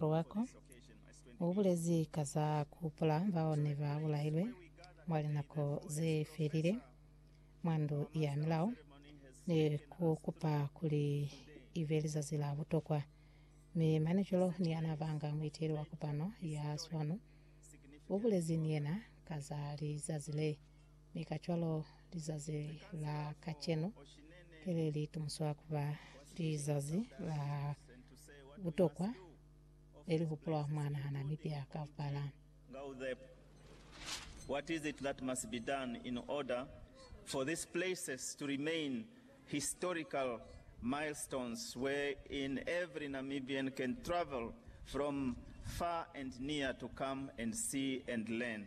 Luwako ubulezi ka za kuhupula bao ne ba bulahilwe mwa linako ze felile mwa Ndu ya Milao ni ku kupa kuli ibe lizazi la butokwa. Mi mane cwalo ni yana banga muiteli wa kopano ya swanu ubulezi ni yena ka za lizazi le. Mi kacwalo lizazi la kacenu ki le li tumuswa kuba lizazi la butokwa le li hupulwa mwa naha Namibia kaupala. Ngauthep, What is it that must be done in order for these places to remain historical milestones wherein every Namibian can travel from far and near to come and see and learn?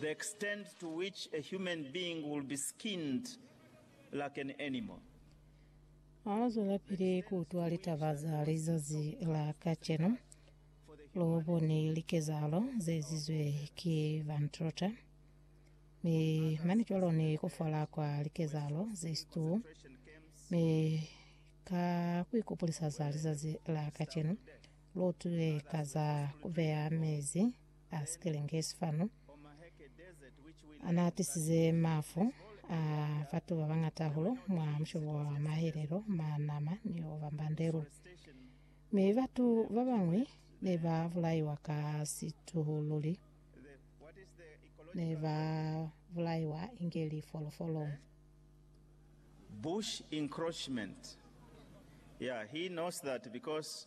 The extent to which a human being will be skinned like an animal. Aa zwelapili ku utwa litaba za lizazi la kacenu. Lu boni likezahalo ze ezizwe ki Van Trotter, mi mane cwalo ni ku fala kwa likezahalo ze Stuo, mi ka ku ikupulisa za lizazi la kacenu, Lutile ka za kubeya mezi a sikelenge sifanu anaatisize mafu a batu babangata hahulu mwa mushobo wa mahelelo, manama ni obambandelu. Mi batu babañwi nebabulaiwa ka situhululi, nebabulaiwa inge lifolofolo. Bush encroachment. Yeah, he knows that because